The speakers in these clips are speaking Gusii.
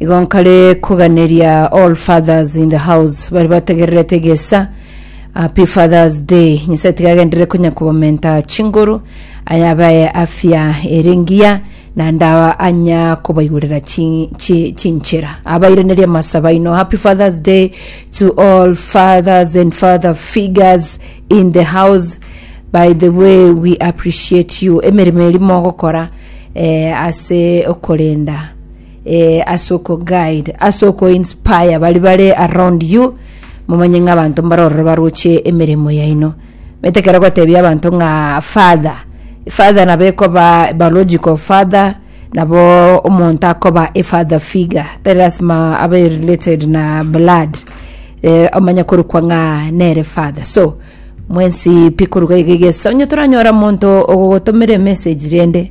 Igo nkare koganeria all fathers in the house bari bategererete egesa happy fathers day nyasaye tiga agenderere konya kobamenta chinguru aya abaye afya ere ngiya na ndawa anya kobaigurera chi- chi- chinchera abaireneria amasaba ino happy fathers day to all fathers and father figures in the house by the way we appreciate you emeremo eri mogokora eh, ase okorenda ase okoguide, ase okoinspire baria bare around you, momanye ng'a abanto mbare ororo baroche emeremo yaino. Omanyete ekero ogotebia abanto ng'a father, father nabo ekoba biological father, nabo omonto akoba a father figure, tari lasima abe related na blood, eh, omanye korokwa ng'a nere father. So, mwensi pi korwa iga iga iga ase, onye toranyore omonto ogogotomera emessage rende.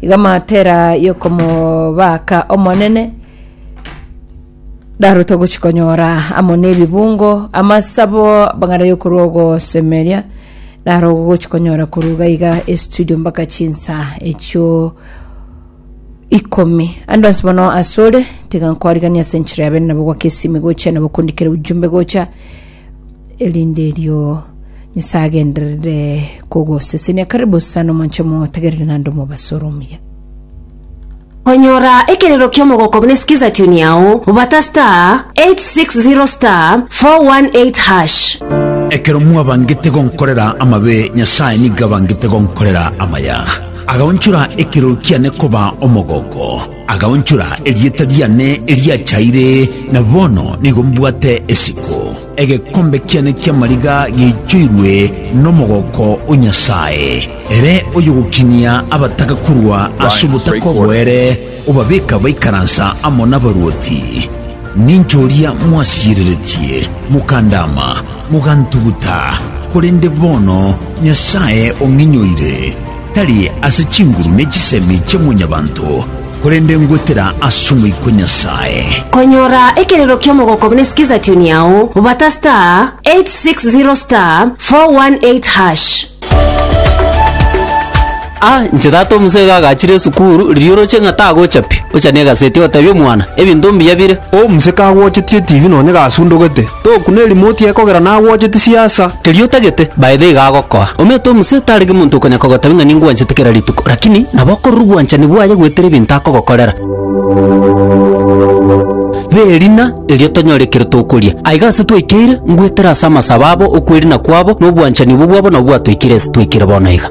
Iga amatera y'okomobaaka Omonene ndarote ogochi konyora amo n'ebibungo amasabo bang'ana y'okorwa ogosemeria naro ogochi konyora korwa iga iga estudio mpaka chinsa echio ikomi ando ansi bono asore tiga nkorigania ase enchera yabe nabo gwaka esimi gocha nabo kondikera ujumbe gocha erinde erio Nyasae agenderere kogosesenia. Karibu sana omonche motegerere nande omobasore omuya. Konyora ekerero ki'omogoko buna sikiza tune yao, bata *860*418#. Ekero mwabangete gonkorera amabe, Nyasae nigo abangete gonkorera amaya, agaonchora ekerero kiane koba omogoko. Agaonchora erieta riane eriachaire, na bono nigo mbwate esiko. Egekombe kiane ki'amariga giaichoirwe nomogooko o Nyasae. Ere oyogokinia abataka korwa ase obotaka oboere, obabeka baikaransa amo nabaruoti. Ninche oria mwasiyereretie, mokandaama, mogantuguta, korende bono Nyasae ong'inyoire. tari ase chinguru ne chisemi chia mwanyabanto, korende ngwetera ase Omoika o Nyasae. Konyora ekerero kiomogoko buna sikiza tune yao bata star 860 star 418 hash. A inche tata omosee iga agachire esukuru, riria oroche ng'a tagochapia, ochanie egaseti otebi omwana, Ebinto mbuya bire. Omusika agwochetie etibi nonye gasundugete, Togokuna erimoti yaye kogera nagwocheti siasa. Erio otagete, by the iga agokoa. Omanyete omosee tarenge monto okonya kogotabia ng'a ningwanchete kera rituko, lakini nabo okorora obwanchani bwaye goetera ebinto akogokorera. B'erina erio tonyore ekero tokoria. Aiga ase twaikeire, ngoetera ase amasabo abo, okwerina kwabo, na obwanchani obwo bwabo nabo bwatoikire ase twaikire bono iga.